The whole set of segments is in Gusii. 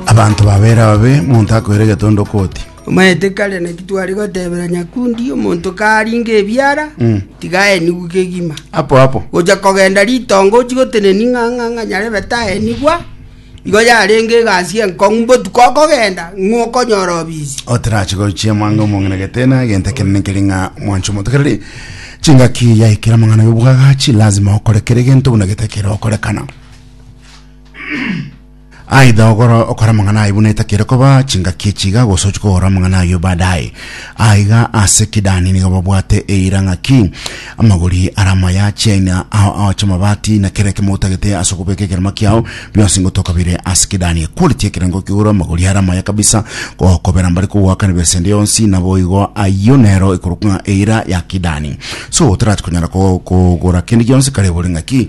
abanto babere ababe monto akoira egetondo koti Omanyete kare naki tware gotebera Nyakundi, omonto karinge ebiara, tiga aenigwe kegima. apo apo Gocha kogenda ritonga ochi goteneni ng'a ng'a ng'a nyarebe taenigwa, igo yarenge egasi enkong'u mbotuko okogenda ng'o okonyora obisi. oterache gochia mwango omong'ina getena egento ekenene keri ng'a mwanche omonto kereri chingaki yaikera amang'ana yobwagachi lazima okore kere gento buna getakera okorekana aidha ogora okora amang'ana aye buna etakere koba chingaki echiga gose ochia kogora amang'ana ayio baadaye aiga ase kidani nigo babwate eira ng'aki amagori ara amaya chiaina ao ao chiamabati na kera ekemo otagete ase okobeka ekerema kiao bionsi ngotoka bire ase kidani equality ekerengo kigoro amagori ara amaya kabisa gokobera mbare kogoakana besa ende yonsi naboigo ayio nero ekorokwa ng'a eira ya kidani so otarati konyara ko- kogora kende gionsi kare ebore ng'aki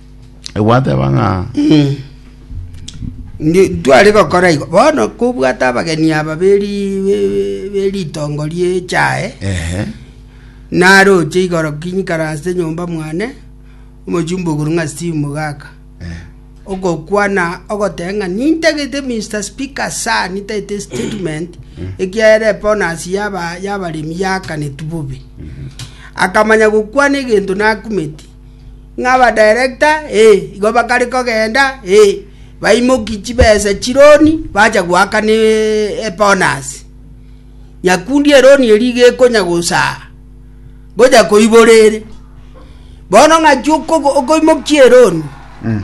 egwateba ng'a Ndi- ntwari gokora igo bono kobwata abageni aba beri- be- beritongo riechae ehe naroche igoro kinyikaranse enyomba mwane omochumba ogoro ng'a steve mogaka eh, ogokwana ogoteba ng'a nintagete mr speaker sa nitagete statement ekiagera eponasi yaba yabaremi yakanetu bobe akamanya gokwana egento nakumeti ng'a abadirector ee, igo bakare kogenda ee, baimoki chibesa chironi bacha goakana ebonus. Nyakundi eroni eri iga ekonya gosaa gocha koibora ere. Bono ng'aki okoimokia eroni mm.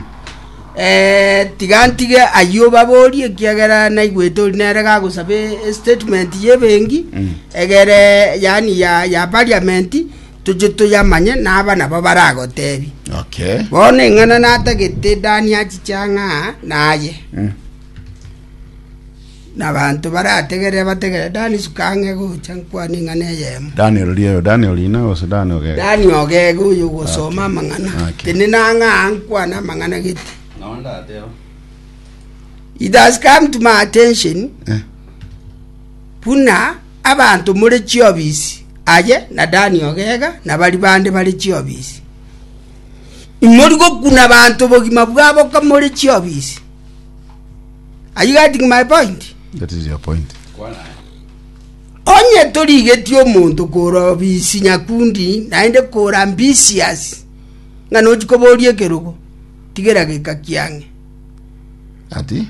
eh, tiga ntige ayio babori ekiagera naigwete ori nere gagosaba statement y'ebengi mm. egere yani ya, ya parliament toche toyamanye naba nabo baragoteebie. Okay. Bono eng'ana natagete Dani achiche ang'a naye. Mm. Na abanto barategerere bategerere Dani suka ang'e gocha nkwane eng'ana eyemo. Dani roria yo, Dani orina gose Dani ogega. Dani ogega oyo ogosoma amang'ana. Okay. Tene nang'a nkwane amang'ana gete. It has come to my attention Eh. buna Abanto more chiobisi, aye na Dani ogega, na baria bande bare chiobisi. Imori gokuna abanto obogima bwabo ka more chiobisi. Are you getting my point? That is your point. Onye torigetie omonto kora obisi nyakundi, naende kora ambitious, ng'a nochi koboria ekerogo, tigera geka kiang'e. Ati,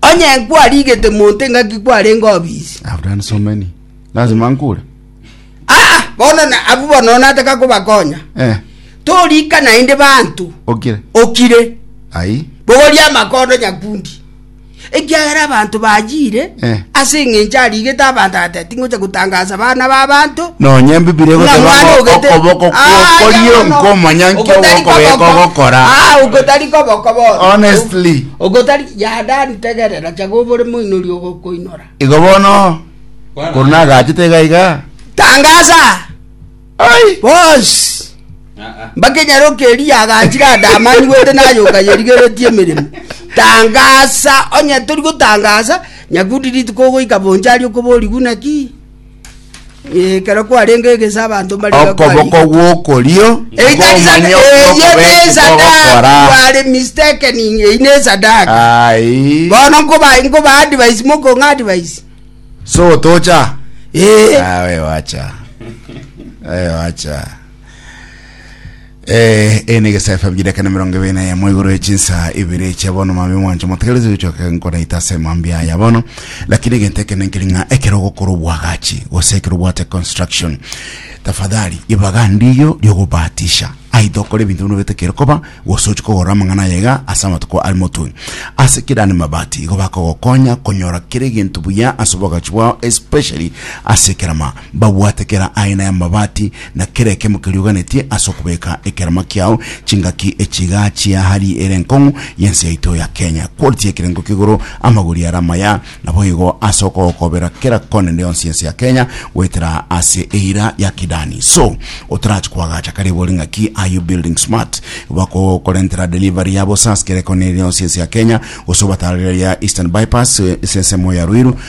Onye kwarigete monto engaki kwarenge obisi. I've done so many. Lazima nkure. Ah, bono na abu bono nataka kobakonya. Eh. Torika naende bantu. Okire. Okire. Ai. Bogoria amakondo nyakundi. Ekiagera abantu bajire. Eh. Ase ng'encha arigete abantu ate tingocha gutangaza bana ba bantu. No nyembi bire gote bango okoboko kokorio nkomanya nkyo okobeko gokora. Ah, ukotari koboko bono. Honestly. Ogotari Yadani, tegerera, chag'o obore moinori ogokoinora. Igo bono, korwa nagachete iga iga, Tangaasa! Ai! Bonsi! Mbakenyaroke eria agachire ande amanyigwete nayoka yerigeretie emeremo. Tangaasa! Onye tori gotangaasa, Nyakudi rituko ogoika bonchari okoborigwe naki? Eh, ekero kwarenge egesa abanto mbare iga okoboko kwarenge. gw'okorio Eitarisa- kw'omonyene eh, ye okobekwa nesadaka, ogokora you are mistaken, eyi nesadaka. Ai. Bono nkoba nkoba advice mokong'a advice. so tocha Eh. Ah, we wacha we wacha Eh, eye negesa efa bibiri ekana mirongo ibiri na yemo igoro echinsa ibiri eche bono mami mwancho motegereze gochoka nkonaita ase mambia aya bono lakini egento ekene nkiri ng'a ekero ogokora obwagachi gose ekero obwate construction tafadhali ibaga ndiyo riogobatisha aito okore ebinto bino bete kere koba gose ochi kogora amang'ana ayega ase amatuko ari motwe ase kira ni mabati igo bakogokonya konyora kere egento buya ase obwagachi bwao especially ase ekerama Mbabwate kera aina y'amabati, na kera ekemo kerioganetie ase okobeka ekerama kiao, chingaki echiiga chia hali ere enkong'u y'ense yaito ya Kenya. Quality y'ekerengo k'igoro, amagori are amaya, naboigo ase okogokobera kera kona ende yonsi y'ense ya Kenya, goetera ase eira ya Kidani. So, otarachie koagacha karibu ore ng'aki, are you building smart? Bakokorentera delivery ya bosaasi kera ekona ere yonsi y'ense ya Kenya, gose obatare reri ya Eastern Bypass, ase ensemo ya Ruiru,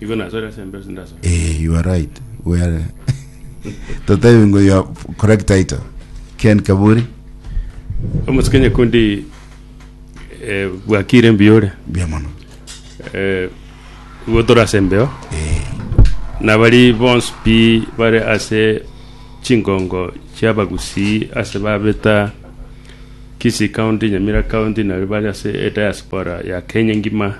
Igo nasore ase embe sindasore. Eh, you are right. We are Totebi ngo you are correct title. Ken Kaburi, Omosike nyekundi eh, bwakire mbiyore. bia mono. Eh, igo tore ase embeo. Eh, Nabari bonsi pi bare ase chingongo chiabagusi ase babeta Kisii County, Nyamira County, nari bari ase e diaspora ya Kenya ngima.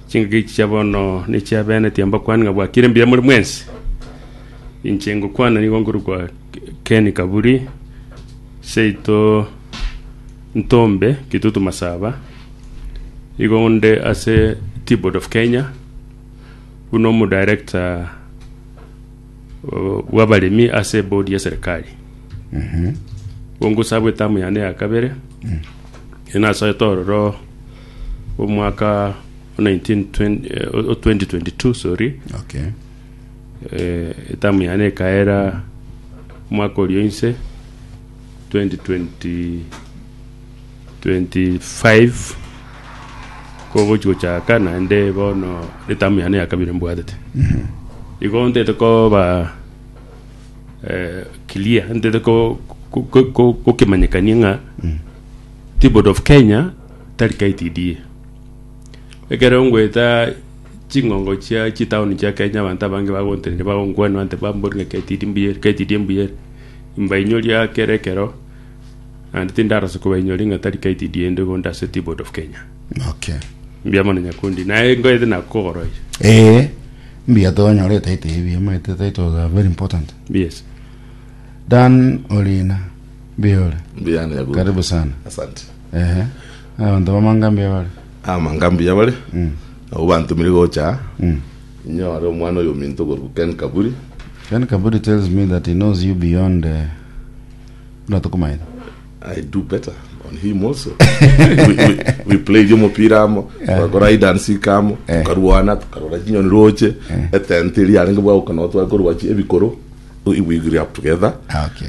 Chingaki echi chia bono nechia bene, tiambakwani ng'a bwakire mbuya more mwensi. Inche ngokwana nigo nkorokwa Ken Kaburi, seito Ntombe, Kitutu Masaba. Igo nde ase T-Board of Kenya, buna omodarector bw'abaremi ase ebodi ya serikali. Igo ngosaba etamu yane ya kabere, nasoete ororo omwaka o 1920 o 2022 sorry Okay. eh, etamu yane ekaera omwaka oria inse 2020 25 kogochi gochaka naende bono etamu yane ya kabere mbwatete igo ntete koba eh, clear ntete ko- ko- ko- ko- kokimanyekania ng'a T-Board of Kenya tari KTDA. Ekero ngoeta ching'ongo chia chitaoni chia Kenya abanto abange bagontenena bagonkwanera bante ba mbori ng'a KTD mbuya ere KTDA mbuya ere. Imbainyoria kera ekero naende tindarosia kobainyoria ng'a tari KTDA inde igo inde ase Tea Board of Kenya. Okay. Mbuya mono Nyakundi. Naye ngoete na kogoroi. Ee, mbuya tonyore etaito ebuya muna ete titles are very important. Yes. Dan Orina, mbuya ore. Mbuya ande Nyakundi. Karibu sana. Asante. Ehe. Abanto b'amanga mbuya bare. Amanga mbuya bare, nabwo bantomire gocha aa, inyore omwana oyominto okorokwa Ken Kaburi. Ken Kaburi tells me that he knows you beyond eh, buna tokomanyete. I do better on him also. we, we, we played omopira amo, togakora hide and seek amo, tokarwana, tokarora chinyoni roche, etenti riarenge bwa gokana nabo tware korwa chi ebikoro, we, we grew up together. Ah, okay.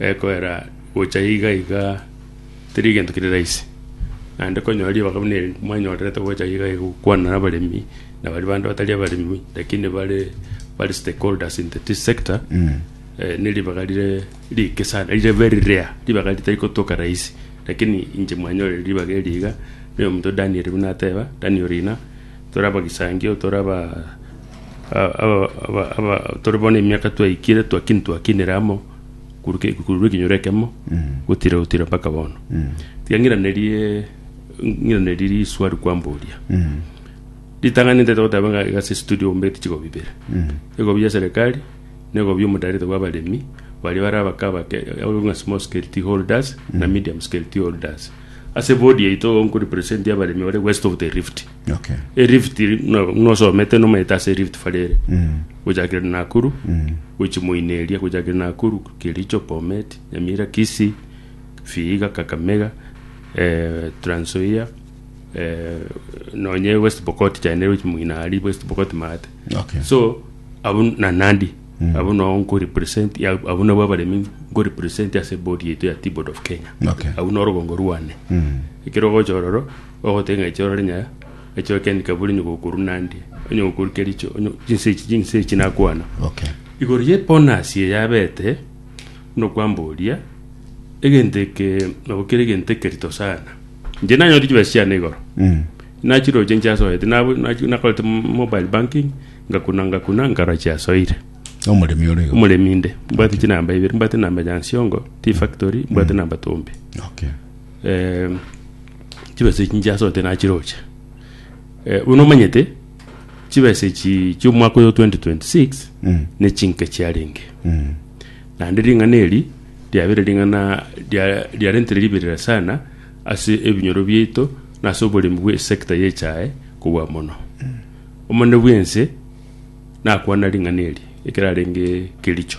Ekoera gocha iga iga teri egento kere rahisi, naende konyora ribaga buna eri mwanyorerete gocha iga iga gokwana na abaremi na baria bande batari abaremi lakini bare bare stakeholders in the tea sector eh, ne ribaga rire rike sana rire very rare ribaga ritari gotoka rahisi lakini inche mwanyorire ribaga eri iga na omonto Daniel buna ateba Daniel Rina tore abagisangio tore aba aba- aba- aba- tore bono emiaka twaikire twakini twakinire amo korwa korwa ekenyoro ekemo gotira gotira mpaka bono tiga ng'iranerie ng'iranerie riswali kwamboria ritang'ani ntaete goteba ng'a iga ase estudio ogombete chigobi ibere egobi ya serikali na egobi ya omodareta bwa abaremi baria bare abake abake ababeka ng'a small scale tea holders na medium scale tea holders ase body yaito igo nkorepresentia abaremi bare west of the rift Okay. erift buna buna osomete nomaete ase erift fari ere Mm. gochakera nakuru Mm. gochimoina eria gochakera nakuru kericho bomet nyamira kisi vihiga kakamega eh, transoia eh, nonye west pokot chaende gochimoina ari west pokot maate Okay. so abo na nandi mm. abo nao nkorepresent ya- abo nabo abaremi nkorepresent ase bodi yaito ya tibod of kenya Okay. abo norogongo rwane Mm. ekero gocha ororo Ogotee ng'a ekioro onye ekioro kiane keburi onye gokorwa nande, onye gokorwa kericho, onye chinsa echi chinsa echi nakwana. Okay. Igoro ye bonus eye yabete, buna okwamboria, egento eke nabo kere egento ekerito sana. Inche nanyorire chibesa chiane igoro, nachiroche nchiasoete, nabu- nachi- nakorete m- mobile banking, ngakuna ngakuna nkarora chiasoire. Omoremi ore igo. Omoremi inde, mbwate chinamba ibere, mbwate enamba ya Nsiongo, Tea Factory, mbwate enamba Tombe. Okay. chibesa echi nchiasorete nachiroche. buna omanyete chibesa echi chiomwaka oyo 2026 nechinke chiarenge naende ring'ana eri riabere ring'ana ria riarentire riberera sana ase ebinyoro biaito na ase oboremi bwe sector ya echae kobua mono. Omonene bwense nakwana ring'ana eri ekero arenge Kericho.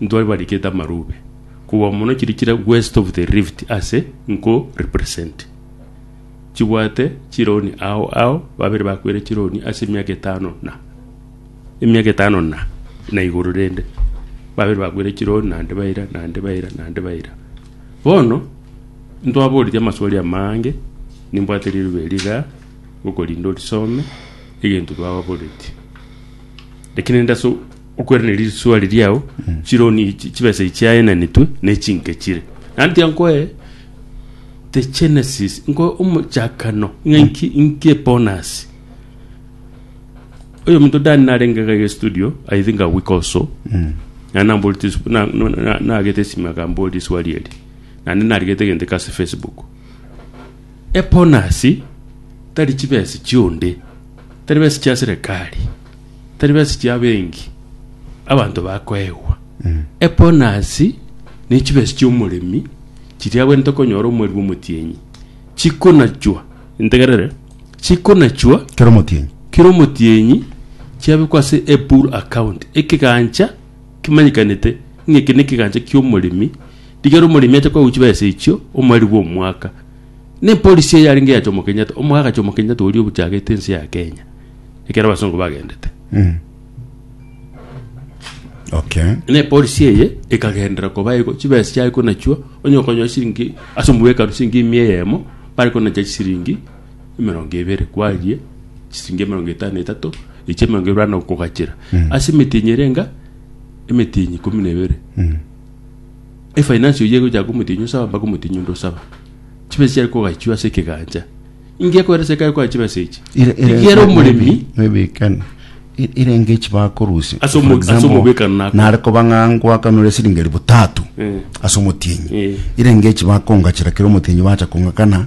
Ntwari barikete amarube kobua mono chiri chire west of the rift ase nko represent chibwate chironi ao ao babere bakwere chironi ase emiaka etano na emiaka etano na na igoro rende babere bakwere chironi nande baira nande baira nande baira bono ntwaboreti amaswali amange nimbwate rirube eri iga okorinde orisome egento twababoreti lakini ende ase Okweraneri rituso riria ao chironi echi chibesa echi chiaenanetwe ne chinke chire. Naende tiga nkoe the genesis nkoe omochakano ng'a inki inki ebonus. Oyominto Dan narenge iga iga studio I think a week or so naende namborete esw- na- no- na- nagete esime akamboria eswali eri naende narigete egento eke ase facebook. Ebonus tari chibesa chionde tari besa chia serekari. tari besiti abengi abanto bakoegwa. Ebonasi ne chibesi chi'omoremi chiria agwenerete okonyora omori bw'omotienyi chikonachwa, integerere, chikonachwa Kera omotienyi. kera omotienyi chiabekwa ase ebur account, ekegancha kemanyekanete ng'a eke nekegancha ki'omoremi, rigeera omoremi ache koegwa chibesa echio omoreri bw'omwaka. Ne polisi eye yarenge yachoma Kenyatta omo agachoma Kenyatta oria obuchagete ense ya Kenya ekero abasongo bagendete Mm. Okay. ne polisi eye ekagendera koba ego chibesa chiaye konachua onye okonyoa siringi ase omobekano siringi mia eyemo bare konacha chisiringi emerongo ebere kwarie chisiringi emerongo etano na etato echi emerongo ebere bana okogachera ase emetinyi erenga emetinyi ikomi na ebere Efainansi oyio egochaka komotienyi osaba mpaka omotienyi onde osaba. Chibesa chiare kogachwa ase ekegancha. Inki ekoera ase ekare koa chibesa echi? Ere- ere- Rigiera maybe- omoremi maybe can- e- erenge echi bakorusia Ase omo- For ase example, omobekano nako. nare koba ng'a ngwakanure esiringi elifu tatu Eh. ase omotienyi Eh. erenge echi bakongachera kera omotienyi bacha kong'akana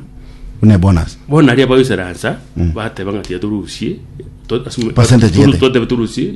buna ebonus bono aria bagoisaransa bateba ng'a tiga torusie to- ase omo- Percentage toru- gete. totebe torusie